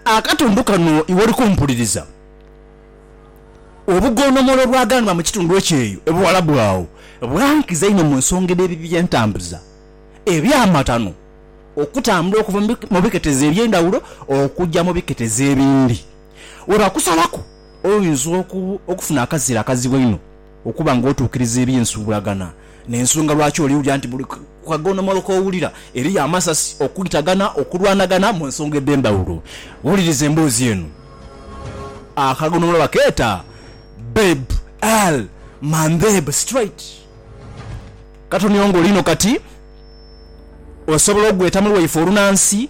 Akatundu kano iwoli kumpuliriza. Obugondomolo obwaghanwa mu kitundu ekyo eyo e Buwalabu agho bwankiza inho mu nsonga edh'ebibi by'entambuza eby'amatano okutambula okuva mu biketezo eby'endhawulo okuja mu biketezo ebindi. Webakusalaku oyinza okufuna akazira akazibu einho. Okuba nga otuukiriza eby'ensuubulagana n'ensonga lwaki oliwulira nti buli kaghonomolo k'owulira eriyo amasasi, okwitagana, okulwanagana mu nsonga edh'endhawulo. Wuliriza emboozi eno. Akaghonomolo bakeeta Bab al Mandeb Strait. Katoni ongo lino kati osobola ogweta mu lwaife olunansi.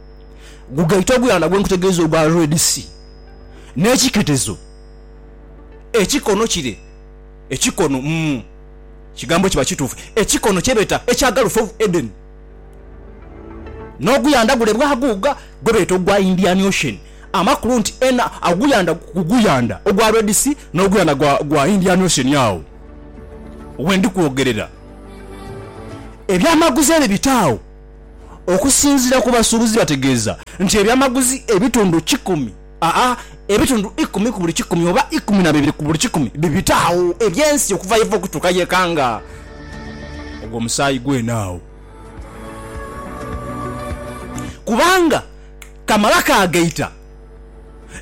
gugaita oguyandha gwe nkutegeeza ogwa Red Sea n'ekiketezo ekikono kire, ekikono mu kigambo kiba kituufu, ekikono kye beeta ekya Gulf of Eden. N'oguyandha gule bwaguuga gwe beeta ogwa Indian Ocean. Amakulu nti ena oguyandha ku guyandha ogwa Red Sea n'oguyandha gwa gwa Indian Ocean agho we ndi kwogerera ebyamaguzi ebyo bitaagho. Okusinzira ku basuubuzi bategeeza nti ebyamaguzi ebitundu kikumi aa ebitundu ikumi ku buli kikumi oba ikumi na bibiri ku buli kikumi bibita agho eby'ensi okuva yeva okutuuka yekanga ogwo omusaayi gwene agho kubanga kamala kagaita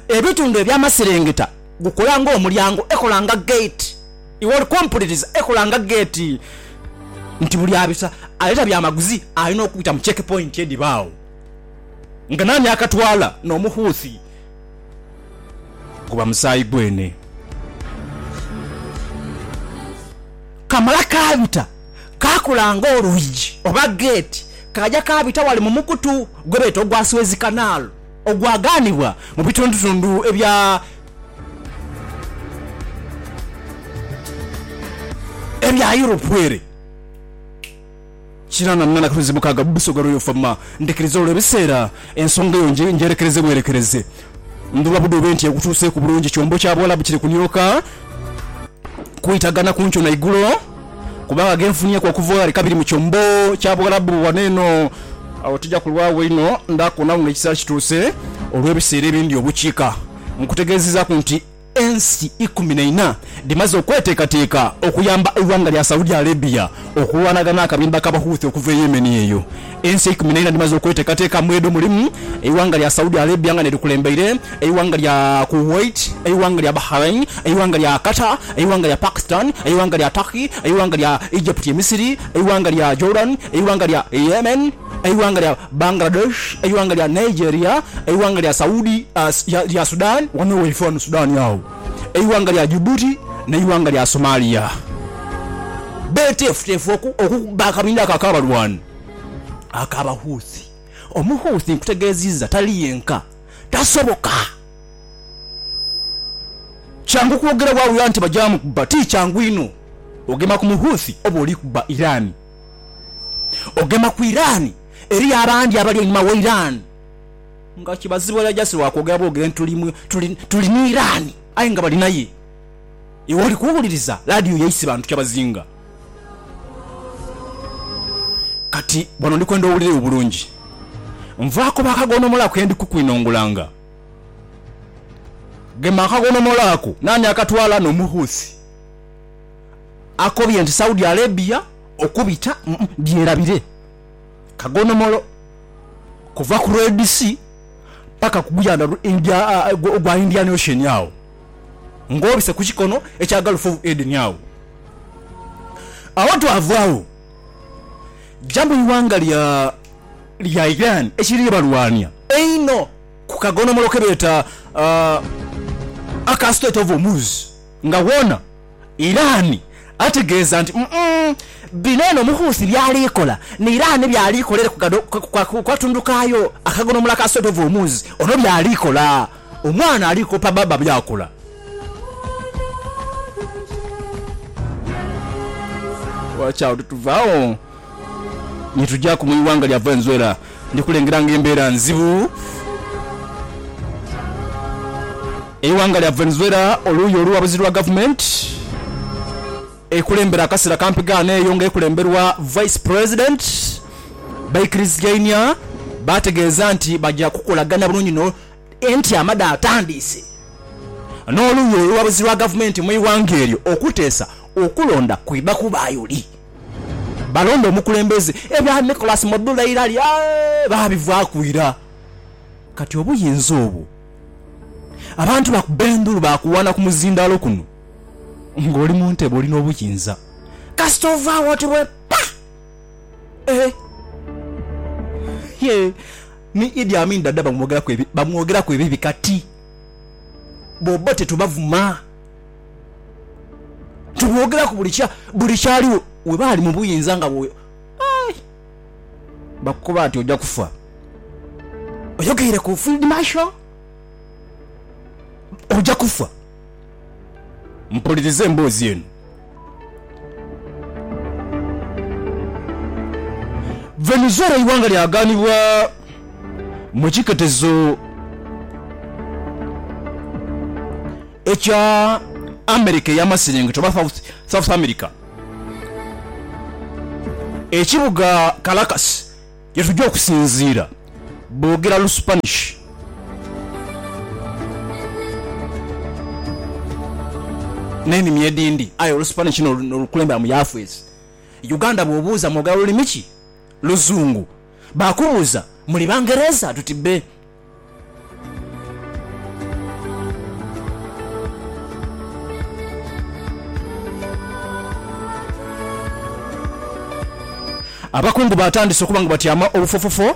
ebitundu eby'amaserengeta gukola ng'omulyango ekola nga gate. Iwe oli kumpuliriza? Ekola nga geeti nti buli abita aleeta byamaguzi alina okubita mu check point edhiba agho nga nani akatwala n'omukhuuthi guba musaayi gwene. Kamala kaabita kaakola nga olwigi oba geeti kaaja kaabita wali mu mukutu gwebeeta ogwa Suez Canal ogwagaanibwa mu bitundutundhu ebya Ebya Europe ere kirana nina na kwezi mukaaga mu busoga Royal Fama ndhikiriza olwo ebiseera ensonga eyo ngyerekereze bwerekereze ndhuba budhube nti ekutuuseeku bulungi kyombo kya Buwalabu kiri kunyooka kwitagana ku nkyo na igulo kubanga genfunyeeku okuva ghale kabiri mu kyombo kya Buwalabu ghano eno awo tija kulwagho inho ndhakubona wo nga ekiseera kituuse olw'ebiseera ebindhi obukiika Nkutegeezezaaku nti ensi ikumi na ina dhimaze okweteekateeka okuyamba eighanga lya Saudi Arabia okulwanaga n'akabinda ka Bahouthi okuva e Yemen. Eyo ensi eikumi na ina dhimaze okweteekateeka mwedho mulimu eighanga lya Saudi Arabia nga n'erikulembeire, eighanga lya Kuwait, eighanga lya Bahrain, eighanga lya Qatar, eighanga lya Pakistan, eighanga lya Turkey, eighanga lya Egypt ye Misiri, eighanga lya Jordan, eighanga lya Yemen. eighanga lya Bangladesh, eighanga lya Nigeria, eighanga lya Saudi lya Sudan wano waife wano Sudan agho, eighanga lya Djibouti n'eighanga lya Somalia beteefuteefu okukubba akabinha ako ak'abalwani ak'Abahouthi. Omuhouthi nkutegeezizza tali yenka, tasoboka kyangu kwogera bwawula nti baja mukubba. Ti kyangu inho ogema ku Muhouthi oba oli kubba Iran. Ogema ku Iran, Eriyo abandi abali einhuma wa Iran nga kibazibwayo just lwa kwogera bwogere nti tuli ni Iran aye nga bali naye. Iwe oli kuwuliriza laadiyo yaise bantu kyabazinga. Kati wano ndi kwenda owulire obulungi. Nvaako baakaghonomola ako ke ndi kukwinongolanga. Gema akaghonomola ako. Naani akatwala? N'Omuhuthi. akobye nti Saudi Arabia okubita byerabire kagonomolo kuva ku Red Sea paka ku guyandha ogwa Indian Ocean agho nga obise ku kikono ekya Gulf of Eden agho awotwava agho ja mu ighanga lya Iran ekiri balwania einho ku kagonomolo kebeeta aka Strait of Hormuz. Nga wona Iran ategeeza nti umm bino eno Omukhuuthi byali kola ni Iran byali kolere ku katundu kaayo akagonomola ka Strait of Hormuz ono byali kola omwana ali kopa baba byakola. Watch out tuva agho. Ni tujaaku mu ighanga lya Venezuela. Ndi kulengera nga embeera nzibu. Eighanga lya Venezuela oluuyi oluwabuzi lwa gavumenti ekulembera akasera kampi ghano eyo nga ekulemberwa Vice President baikiriziainia bategeeza nti baja kukolagana bulungi no entyama dhatandiise n'oluuyi oluwabuzi lwa gavumenti mu ighanga eryo okuteesa okulonda kwidha kubaayo li. Balonda omukulembeze, ebya Nicholas Mabula Irali baabivaaku ira. Kati obuyinza obwo abantu bakubba endhulu baakuwaana ku muzindaalo kuno. Ng'oli mu ntebe oli n'obuyinza kasita ovaagho oti lwe ppa! Eeh! Yee, ni Idi Amin Dada bamwogeraku ebibi kati bbo tetubavuma. Tubogeraku buli kya buli kyaligho webaali mu buyinza nga bwe Aye bakukoba ati oja kufa oyogeire ku field marshal oja kufa mpuliriza emboozi eno Venezuela eighanga lyaganibwa mu kiketezo. Ekya Amerika ey'Amasiringito oba South America. Ekibuga Caracas ye tuja okusinziira boogera Lusupanishi. N'enimi edhindi aye Olusupanishi n'olukulembera mu yaafeesi. Uganda bw'obuuza mwogera lulimi ki? Luzungu. Baakubuuza muli Bangereza? Tuti bbe. Abakungu baatandise okuba nga batyaama obufofofo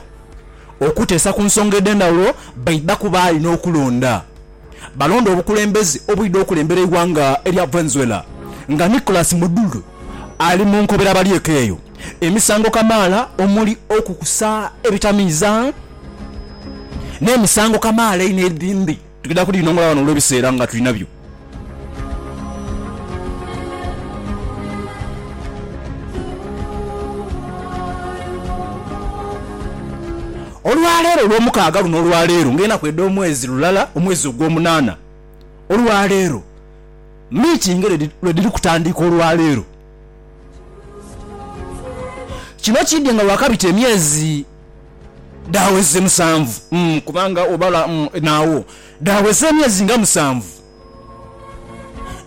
okuteesa ku nsonga edh'endhawulo baidhaku baali n'okulonda. balonda obukulembeze obwidha okulembera eighanga erya Venezuela nga Nicolas Maduro ali mu nkobera abalyeku eyo emisango kamaala omuli okukusa ebitamiiza n'emisango kamaala einho edhindi tugenda kudhinongola ghano olw'ebiseera nga tulinabyo. Olwa leero, Olwomukaaga luno olwa leero, ng'enaku edh'omwezi lulala, omwezi ogwomunaana, olwa leero, miitingi edho lwe dhiri kutandika olwa leero. Kino kiidhie nga waakabita emyezi dhaaweze musanvu, kubanga obala naagho, dhaaweza emyezi nga musanvu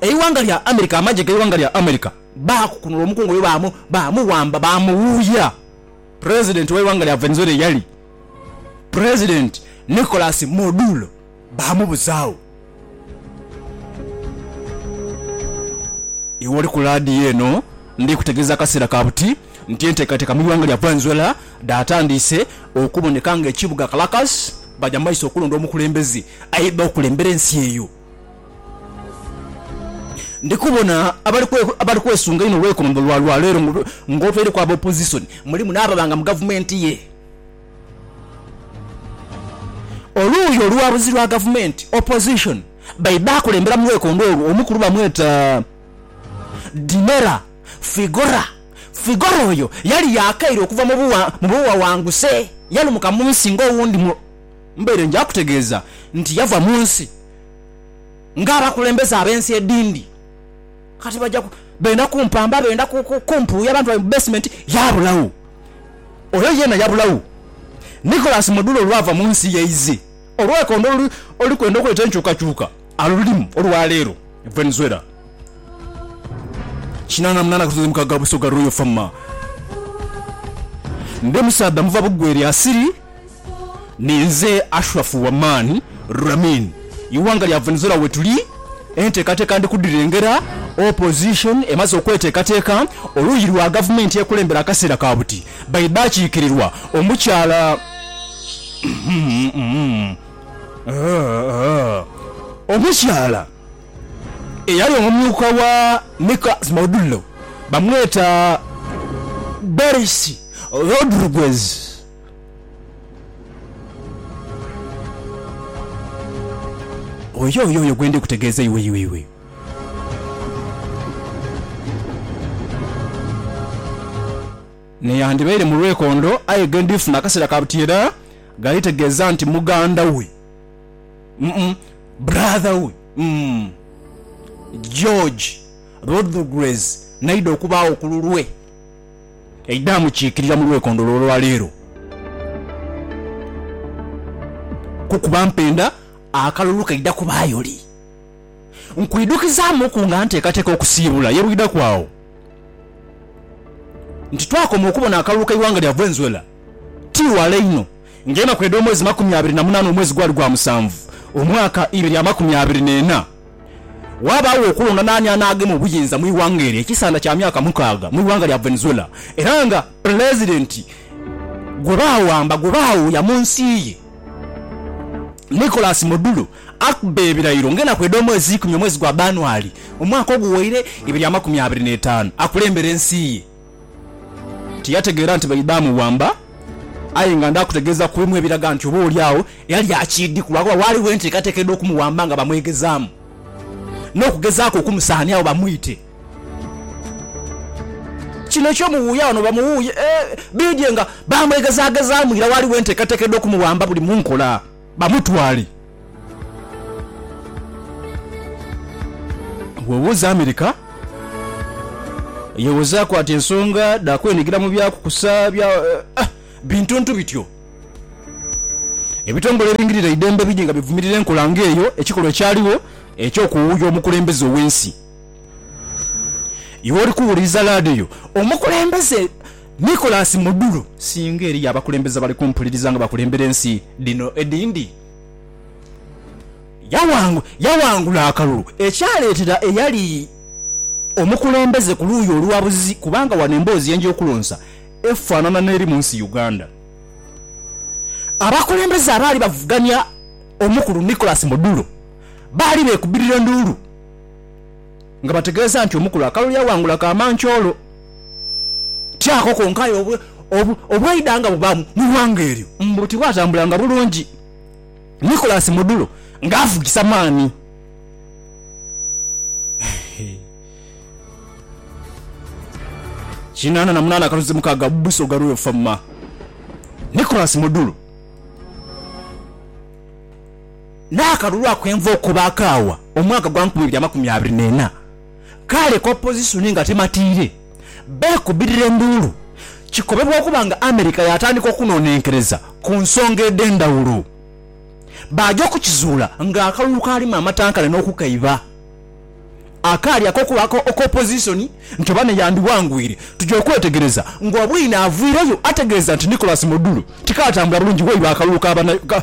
eighanga lya America, amagye g'eighanga lya America baakukunula omukungu oyo baamuwamba, baamuwuuya. President w'eighanga lya Venezuela eyali President Nicolas Maduro baamubuzaagho. Iwe oli ku laadiyo eno ndi kutegeeza akaseera ka buti nti enteekateeka mu ighanga lya Venezuela dhaatandiise okuboneka ng'ekibuga Caracas baja mu maiso okulonda omukulembeze aidha okulembera ensi eyo. Ndi kubona abali kwesunga inho olw'eikomandho lwa lwa leero ng'otweireku aba opozisoni, mulimu n'ababanga mu gavumenti ye oluuyi oluwabuzi lwa gavumenti, opposition, baidha akulembera mu lwekondo olwo omukulu bamweta Dinera Figora. Figora oyo yali yaakaire okuva mu buwawanguse, yalumuka mu nsi ng'owundi mu. Mbaire nja kutegeeza nti yava mu nsi nga abakulembeze ab'ensi edindi kati baja benda kumpamba, benda kumpuuya abantu baibwe mu basement. Yaabulagho. Oyo yeena yabulagho. Nicholas Mudula olwava mu nsi yaidhe olwekondo oluli kwenda okuleta enkyukakyuka. Alulimu olwa leero Venezuela kinaana munaana akatunzi mukaaga wa Busoga Royal Farmer ndi musaadha muva bugwe lya siri ninze Ashraf Waman Ramin iwanga lya Venezuela wetuli enteekateeka ndi kudhirengera Opposition emaze okweteekateeka oluuyi lwa gavumenti ekulembera akaseera ka buti baidha kiikirirwa omukyala Omukyala eyali omumyuka wa Mika Smaudullo bamweta Doris Rodriguez. Oyo y'oyo gwe ndi kutegeeza iwe. Neyandibaire mu lwekondo aye ghe ndifuna akaseera ka buti era. Ghalitegeeza nti muganda we, mm, brother we, mm. George Rodrguez n'aidha okubaagho ku lulwe, aidha amukiikirira mu lwekondho olwaleero. Kukuba mpenda akalulu kaidha kubaayo li? Nkwidhukizaamuku nga nteekateeka okusiibula ye bwidhaku agho nti twakoma okubona akalulu k'eighanga lya Venezuela. Ti wala inho, ng'enaku edh'omwezi makumi abiri na munaana omwezi gwali gwa musanvu, omwaka ibe lya makumi abiri n'ena, waabaawo okulonda naani anaagema obuyinza mu ighanga eryo ekisaandha kya myaka mukaaga mu ighanga lya Venezuela, era nga Pulezidenti gwe baawamba gwe baawuuya mu nsi ye, Nicolas Maduro, akuba ebirayiro ng'enaku edh'omwezi eikumi omwezi gwa Abanuali omwaka oguwaire ibe lya makumi abiri n'etaanu, akulembere ensi ye. Tiyategeera nti baidha muwamba. Aye nga ndha kutegeeza ku imwe ebiraga nti oba oli agho yali akiidhi, ku lwakuba ghaligho enteekateeka edh'okumuwamba nga bamwegezaamu n'okugezaaku okumusaaniagho bamwite. Kino eky'omuwuuya wano bamuwuuye, ee, bidhie nga baamwegezaagezaamu ira ghaligho enteekateeka edh'okumuwamba buli mu nkola. Bamutwale wewuza America. Yewuzaaku ati ensonga dha kwenigira mu bya kukusa bya bintuntu bityo. Ebitongole ebingirira eidembe bidhi nga bivumirira enkola nga eyo, ekikolwa ekyaligho eky'okuwuuya omukulembeze ow'ensi. Iwe oli kuwuliriza laadiyo, omukulembeze. Nicholas Muduro, Singa eriyo abakulembeze abali kumpuliriza nga bakulembera ensi dhino edhindi, yawangula akalulu ekyaleetera eyali omukulembeze ku luuyi oluwabuzi kubanga wano emboozi ye nja okulonsa efaanana n'eri mu nsi Uganda. Abakulembeze abaali bavuganya omukulu Nicholas Muduro baali beekubirira nduulu. nga bategeeza nti omukulu akalulu yaghangula Kamanchoolo. Ti ako konka aye obwaidha nga bubaamu mu ighanga eryo mbu tibwatambulanga bulungi. Nicholas Mudulo nga avugisa maani. Kinaana na munaana akaluzi mukaaga Busoga lwenfama. Nicholas Mudulo. n'akalulu akw'enva oko baakaawa omwaka gwa nkumi ibiri amakumi abiri n'ena. Kale ku opozisoni nga tematiire, beekubirira enduulu. Kikobebwa okuba nga Amerika yaatandika okunoonenkereza ku nsonga edh'endhawulo, baaja okukizuula ng'akalulu kaalimu amatankane n'okukaiba akaali ak'okuba ak'opozisoni nti oba n'eyandiwangwire. Tuja okwetegereza ng'obwine avwireyo ategeeza nti Nicholas Modulu tikaatambula bulungi waidha akalulu ka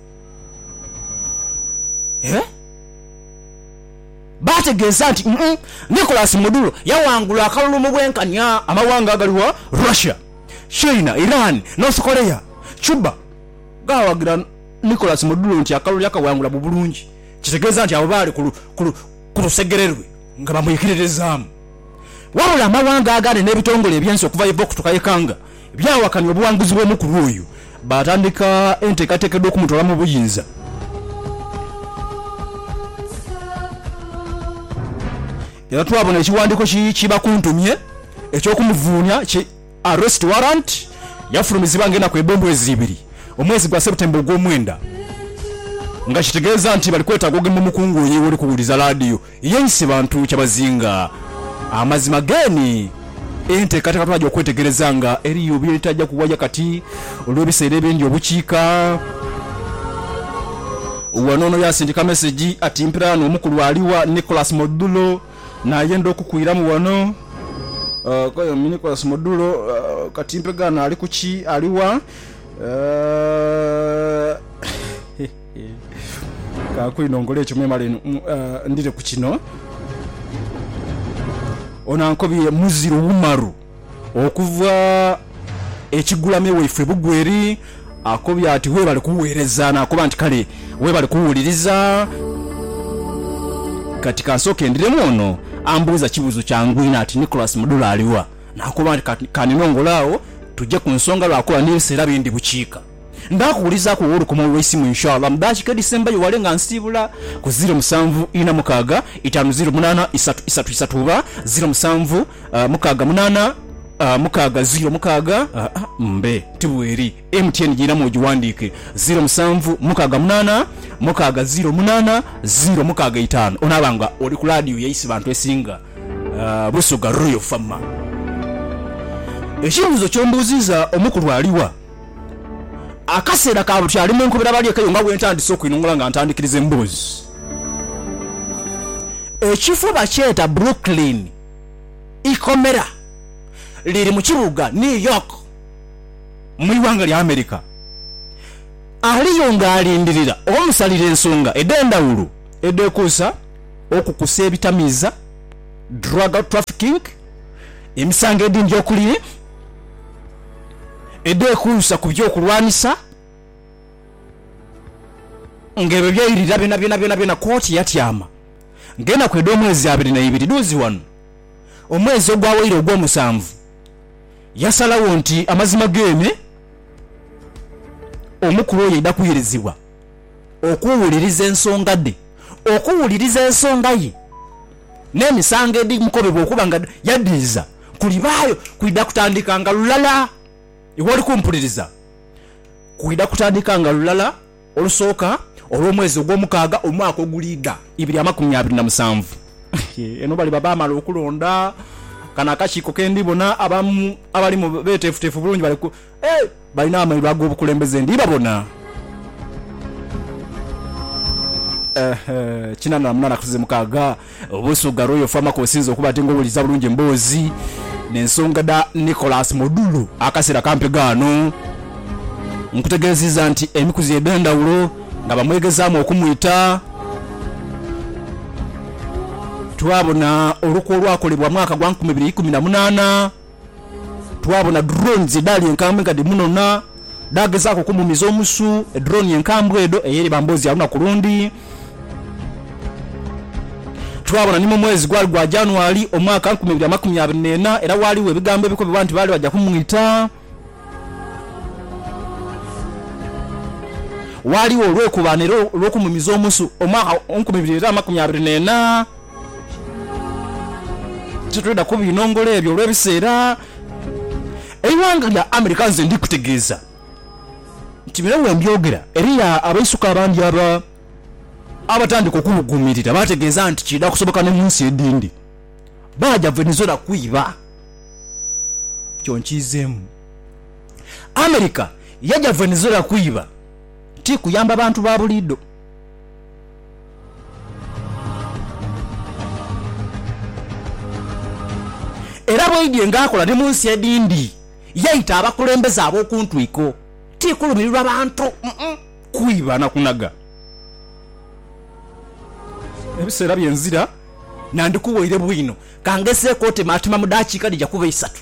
Baategeeza nti Nicholas Maduro yaghangula akalulu mu bwenkanya amawanga agali gha Russia, China, Iran, North Korea, Cuba gaawagira Nicholas Maduro nti akalulu yakaghangula mu bulungi kitegeeza nti abo baali ku lusegere lwe nga bamwikiririzaamu. Wabula amawanga agandi n'ebitongole eby'ensi okuva ye Vox tukaikanga Byawakanya obuwanguzi bw'omukulu oyo, baatandika enteekateeka edh'okumutwala mu buyinza. Era twabona ekiwandiiko ki ki bakuntumye eky'okumuvuunia ki arrest warrant, yafulumizibwa nga enaku ebba omwezi ibiri, omwezi gwa September ogw'omwenda, nga kitegeeza nti bali kwetaaga ogema omukungu oyo egh'oli kuwuliza laadiyo. Yeise bantu kyabazinga amazima geeni. Enteekateeka twaja okwetegereza nga eriyo by'etaja kuwaya kati olw'ebiseera ebindi obukiika. Wano ono yaasindika mesegi ati, Mpiraano omukulu ali wa? Nicholas Modulo n'ayenda okukwiramu wano. Koyomi, Nicholas Modulo, kati mpegaano ali ku ki? Ali wa? Kaaku inho nkola ekyo memale ndhire ku kino. Ono ankobye muziro Umaru okuva e Kigulame waifwe Bugweri. Akobye ati webale kugheereza naakoba nti kale webale kuwuliriza. Kati kansooke ndhiremu ono ambuuza kibuuzo kyangu inho ati Nicholas Mudhula aliwa? Naakoba nti kaninoongole agho tuje ku nsonga lwakuba n'ebiseera bindhi bukiika. Ndaakuwulizaaku wowe olukoma olw'eisimu inshallah mu daakika edhisembayo wale nga nsiibula ku ziro musanvu ina mukaaga itaanu ziro munaana isatu isatu isatu oba ziro musanvu mukaaga munaana mukaaga ziro mukaaga mbe ti bweri. MTN giiramu ogiwandiike ziro musanvu mukaaga munaana mukaaga ziro munaana ziro mukaaga itaanu onaaba nga oli ku laadiyo ya Isibantu esinga Busoga Royal Fama. Ekibuuzo ky'ombuuzizza omukulu aliwa? Akaseera ka buti ali mu nkobera balyekaiyo nga bwentandise okwinunula nga ntandikiriza emboozi. Ekifo bakyeta Brooklyn. Ikomera liri mu kibuga New York mu ighanga lya America. Aliyo nga alindirira omusalira ensonga edhendhawulo edhekosa okukusa ebitamiiza, drug trafficking, emisango edindi okuli. edheekuusa ku by'okulwanisa nga ebyo byairira byonabyona byonabyona kkooti yatyama nga enaku edh'omwezi abiri naibiri dhuuzi ghano omwezi ogwawaire ogwomusanvu yasalagho nti amazima geeme omukulu oyo aidha kuirizibwa okuwuliriza ensonga dhe okuwuliriza ensonga ye n'emisango edhimukobebwa okuba nga yadhiiza. kulibaayo kwidha kutandikanga lulala. Iwe oli kumpuliriza? Kwidha kutandikanga lulala Olusooka olw'omwezi ogwomukaaga omwaka oguliidha ibiri amakumi abiri na musanvu. Eno baliba baamala okulonda. Kano akakiiko ke ndi bona abamu abali mu beeteefuteefu bulungi bali ku. Eeh! Balina amaiba ag'obukulembeze ndi babona. Eehh kinana na munana kusize mukaaga Busuga Royal Farm ako osinze okuba ate nga owuliriza bulungi emboozi n'ensonga dha Nicholas Modulu akaseera kampi ghaano nkutegeeziiza nti emikuzi edhendhawulo nga bamwegezaamu okumwita twabona olukwe olwakolebwa mwaka gwa nkumi ibiri ikumi na munaana Twabona drones edhali enkambwe nga dhimunona, dhaagezaaku okumumiza omusu. Edrone enkambwe edho ey'eriba mboozi ya lunaku lundi. Twabona ni mu mwezi gwali gwa January, omwaka nkumi ibiri amakumi abiri n'ena, era waaliwo ebigambo ebikobebwa nti baali baja kumwita. Waaliwo olwekubaane era olw'okumumiza omusu omwaka nkumi ibiri era amakumi abiri n'ena. Titwidha kubinongola ebyo olw'ebiseera. Eighanga lya America nze ndi kutegeeza nti bino we mbyogera eriyo abaisuka abandi aba abatandika okubuguumirira baategeeza nti kiidha kusoboka ne mu nsi edhindi baaja Venezuela kwiba. Ekyo nkiizeemu. America yaja Venezuela kwiba ti kuyamba bantu ba buliidho. Era bweidhie ng'akola ni mu nsi edhindi, yaita abakulembeze ab'oku ntwiko, ti kulumirirwa bantu, kwiba na kunhaga. Ebiseera bye nzira nandikuwoire bwino, ka ngezeeku otemaatema mu daakiika dhija kuba isatu.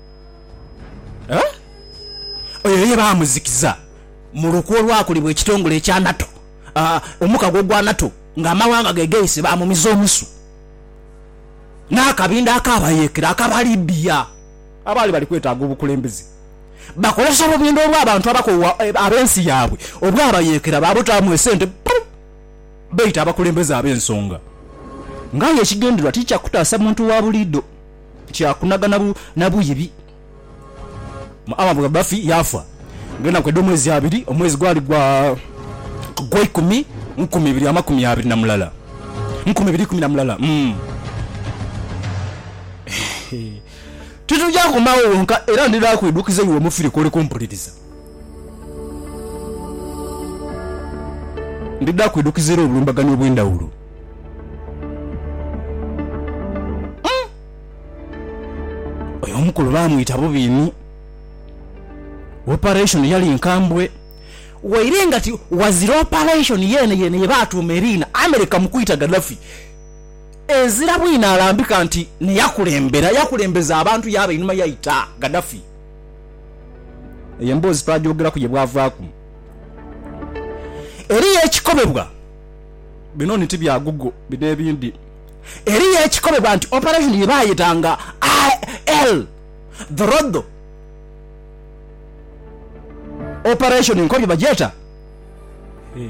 Oyo ye baamuzikiza mu lukwe olwakolebwa ekitongole ekya NATO, omukago ogwa NATO, ng'amawanga ge geise baamumiza omusu n'akabinda akaabayeekera aka Balibia abaali bali kwetaaga obukulembeze. Bakozesa obubinda obw'abantu abakoowu ab'ensi yaabwe obwabayeekera baabutaamu esente buu beeita abakulembeze ab'ensonga. Ng'aye ekigendererwa ti kya kutaasa muntu wa buliidho. Kyakunaga na bu na bwiibi. Muammar Gaddafi yaafa ng'enaku edh'omwezi abiri, omwezi gwali gwa Gweikumi mu nkumi ibiri amakumi abiri na mulala, mu nkumi ibiri ikumi na mulala. Titugya koma agho ghonka, era ndidha kuidhukiza iwe omufire kw'oli kumpuliriza. Ndidha kuidhukiza era obulumbaganyi obw'endhawulo. Oyo omukulu baamwita bubi inho. Operation yali nkambwe. Waire nga ti wazira operation yeene yeene ye baatuuma eriina America mu kwita Gaddafi, ezira bwino alambika nti n'eyakulembera, yakulembeza abantu yaaba einhuma yaita Gaddafi. Eyo emboozi twaagyogeraku ye bwavaaku. Eriyo ekikobebwa. Bino ni ti bya Google, bino ebindi. Eriyo ekikolebwa nti operation ye baayeta nga AL dhorodho operation nkobi bagyeta eh,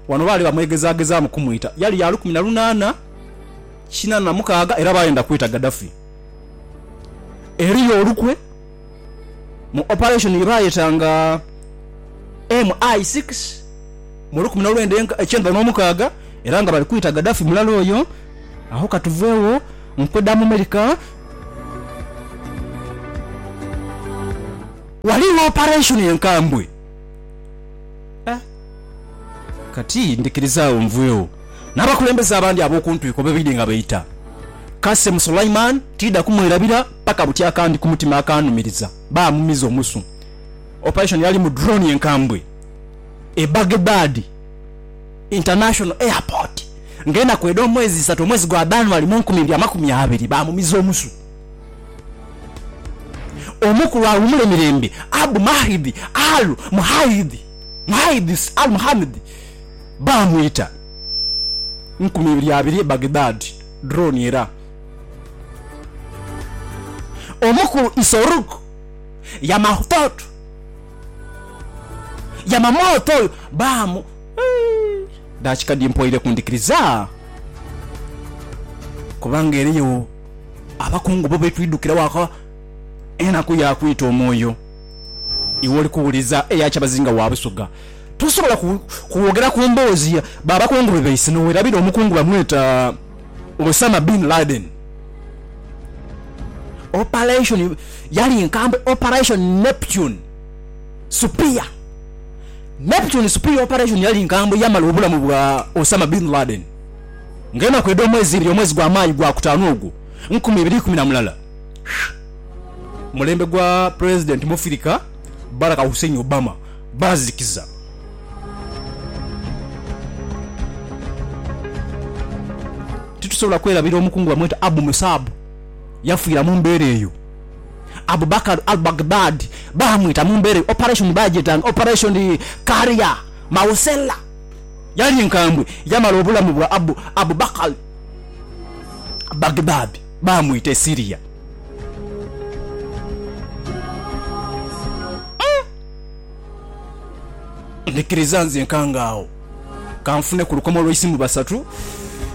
wano baali bamwegezagezaamu kumwita yali ya lukumi na lunaana kinaana na mukaaga era baayenda kwita Gaddafi. Eriyo olukwe. mu operation yebaayeta nga MI six mu lukumi nolwenda ekyenda nomukaaga era nga bali kwita Gaddafi mulala oyo agho katuveegho nkwe dha mu Merica. Ghaligho operation enkambwe kati ndhikiriza agho nveegho n'abakulembeze abandi ab'okuntwiko bwebaidhi nga baita Qasem Sulaiman tidha kumwerabira. Paka buti akandi ku mutima akaanumiriza, baamumiza omusu. Operation yali mu drone enkambwe e Baghdad International Airport ng'enaku edh'omwezi isatu omwezi gwa Danuary mu nkumi ibiri amakumi abiri, baamumiza omusu. Omukulu awumule mirembe Abu Mahdi Al Muhaidh, Muhaidhis Al Muhammad, baamwita nkumi ibiri abiri e Baghdad, drone era. Omukulu Isorug Yamahthoth Yamamoth oyo baamu Daki kadi mpoire kundhikiriza kubanga eriyo abakungu bo betwidhukira waka enaku ya kwita omwoyo iwe oli kuwuliriza eya kyabazinga wa Busoga tosobola kwogera ku mboozi ba bakungu be baise nowerabira omukungu bamweta Osama Bin Laden Operation yali nkambwe Operation Neptune Supia Neptune Supia Operation yali nkambwe yamala obulamu bwa Osama Bin Laden nga enaku edh'omwezi ibiri omwezi gwa Maayi gwa kutaanu ogwo nkumi ibiri ikumi na mulala mulembe gwa Pulezidenti Mufirika Barack Hussein Obama baazikiza. Titusobola kwerabira omukungu bamweta Abu Musab, yafiira mu mbeera eyo. Abu Bakar al-Baghdadi baamwita mu mbeera eyo. Operation baagyetanga Operation Qaria Mawsella. Yali nkambwe, yamala obulamu bwa Abu Abu Bakar al-Baghdadi baamwita e Syria. Ndhikiriza nze nkangaagho ka nfune ku lukomo lwa isimu basatu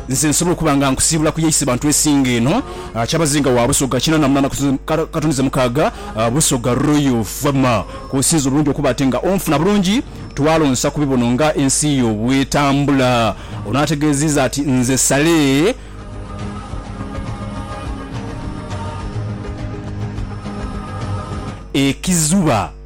nze nsobole okuba nga nkusiibula ku ya Isebantu esinga eno, Kyabazinga wa Busoga kinaana mu munaana katuni ze mukaaga, Busoga Royal Fama. Kw'osinza obulungi okuba ate nga onfuna bulungi twalonsa ku bibono nga ensi yo bw'etambula. Ono ategeeziiza ati nze Saleh. Ekizuba.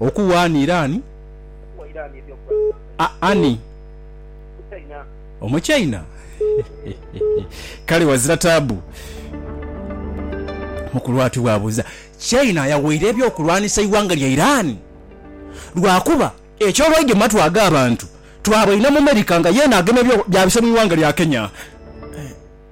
Okuwa ani Irani? A, ani? Omuchaina? Kale wazira taabu. Mukulu ati bw'abuuza. Chaina yawaire eby'okulwanisa eighanga lya Irani? Lwakuba eky'olwaidhi mu matu ag'abantu, twaba inho mu America nga yeena agema ebyo byabise mu ighanga lya Kenya.